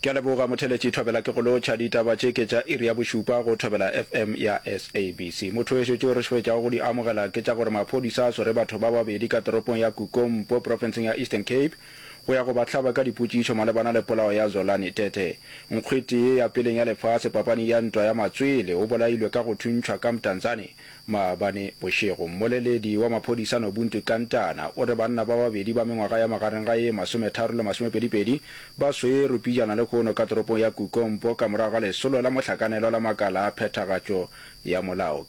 Ke a leboga motheletši Thobela ke go lotšha ditaba tše ke tša iri ya bošupa go Thobela FM ya SABC. Mothoweso tšeo re šoetšago go di amogela ke tša gore maphodisa a swere batho ba babedi ka toropong ya Kukompo profenseng ya Eastern Cape go ya go ba hlaba ka dipotšišo malebana le polao ya Zolani Tete nkgwetee ya peleng ya lefase papaning ya ntwa ya matswele o bolailwe ka go thuntšhwa ka Mtanzane Maabane bošego, mmoleledi wa maphodisa Nobuntu Tlantana o re banna ba babedi ba mengwaga ya magareng ga ye masometharo le masomepedipedi ba swerwe pijana lekhono ka toropong ya Kukompo ka morago ga lesolo la mohlakanelwa la makala a phethagatšo ya molao.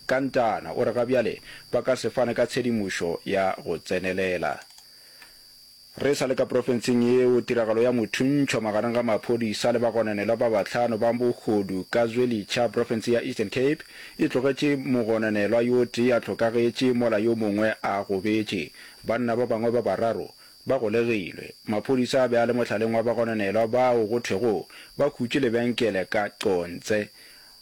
Tlantana o re ga bjale ba ka se fane ka tshedimošo ya go tsenelela. Re sa le ka profenseng yeo, tiragalo ya mothuntšhwa magareng ga maphodisa le bagononelwa ba bahlano ba bogodu ka Zwelitsha, profense ya Eastern Cape, e tlogetše mogononelwa yo tee a hlokagetše mola yo mongwe a gobetše. Banna ba bangwe ba bararo ba golegilwe. Maphodisa a be a le mohlaleng wa bagononelwa bao go thwego ba hutše lebenkele ka Qonce.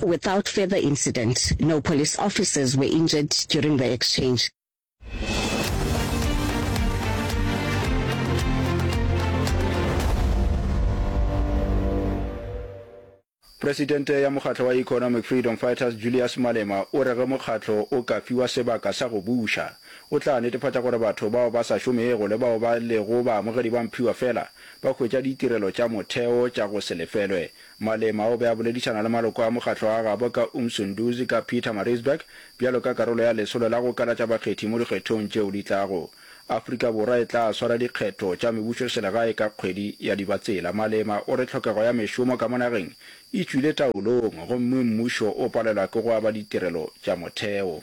Without further incident, no police officers were injured during the exchange. Presidente ya mokgatlo wa Economic Freedom Fighters Julius Malema o re ge mokgatlo o ka fiwa sebaka sa go buša, o tla netefatša gore batho bao ba sa šomego le bao ba lego baamogedi ba mphiwa fela ba hwetša ditirelo tša motheo tša go se lefelwe Malema o be a boledišana le maloko a mokgatlo wa gabo ka Umsunduzi ka Pietermaritzburg bjalo ka karolo ya lesolo la go kalatša bakgethi mo dikgethong tšeo di tlago. Afrika Borwa e tla swara dikgetho tša mebušoselegae ka kgwedi ya Dibatsela. Malema o re tlhokego ya mešomo ka mo nageng e tšwile taolong gomme mmušo o palelwa ke go aba ditirelo tša motheo.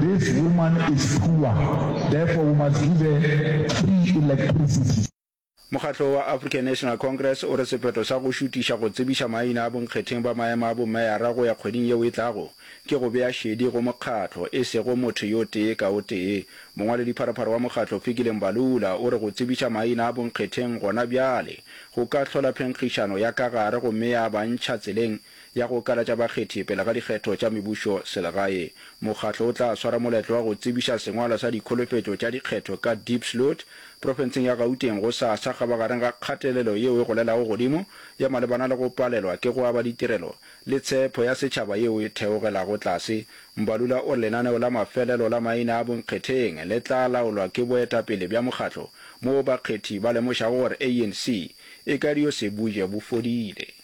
This woman is poor therefore we must give her free electricity. Mokgatlo wa African National Congress o re sephetho sa go šutiša go tsebiša maina a bonkgetheng ba maemo a bomeyara go ya kgweding yeo e tlago ke go bea šedi go mokgatlo, e sego motho yo tee ka o tee. Mongwaledipharopharo wa mokgatlo Fikile Mbalula o re go tsebiša maina a bonkgetheng gona bjale go ka hlola phenkgišano ya ka gare gomme ya ba ntšha tseleng ya go kalatša bakgethi pele ga dikgetho tša mebušo selegae. Mokgatlo o tla swara moletlo wa go tsebiša sengwalwa sa dikholofetšo tša dikgetho ka Diepsloot, profenseng ya Gauteng go sa sa kgabagareng ga kgatelelo yeo e golelago godimo ya malebana le go palelwa ke go aba ditirelo le tshepho ya setšhaba yeo e theogelago tlase. Mbalula o re lenaneo la mafelelo la maina a bonkgetheng le tla laolwa ke boetapele bja mokgatlo moo bakgethi ba lemošago gore ANC e ka dio se buje bo fodile.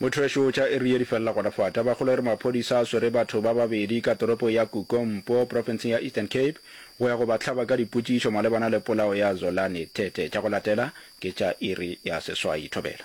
Mothwešo tša iri ye di felela gona fa. Tabakgolo e re maphodisa a swere batho ba babedi ka toropo ya Kukompo, profenseng ya Eastern Cape, go ya go ba hlaba ka dipotšišo malebana le polao ya Zolani Tete. Tša go latela ke tša iri ya seswai. Thobela.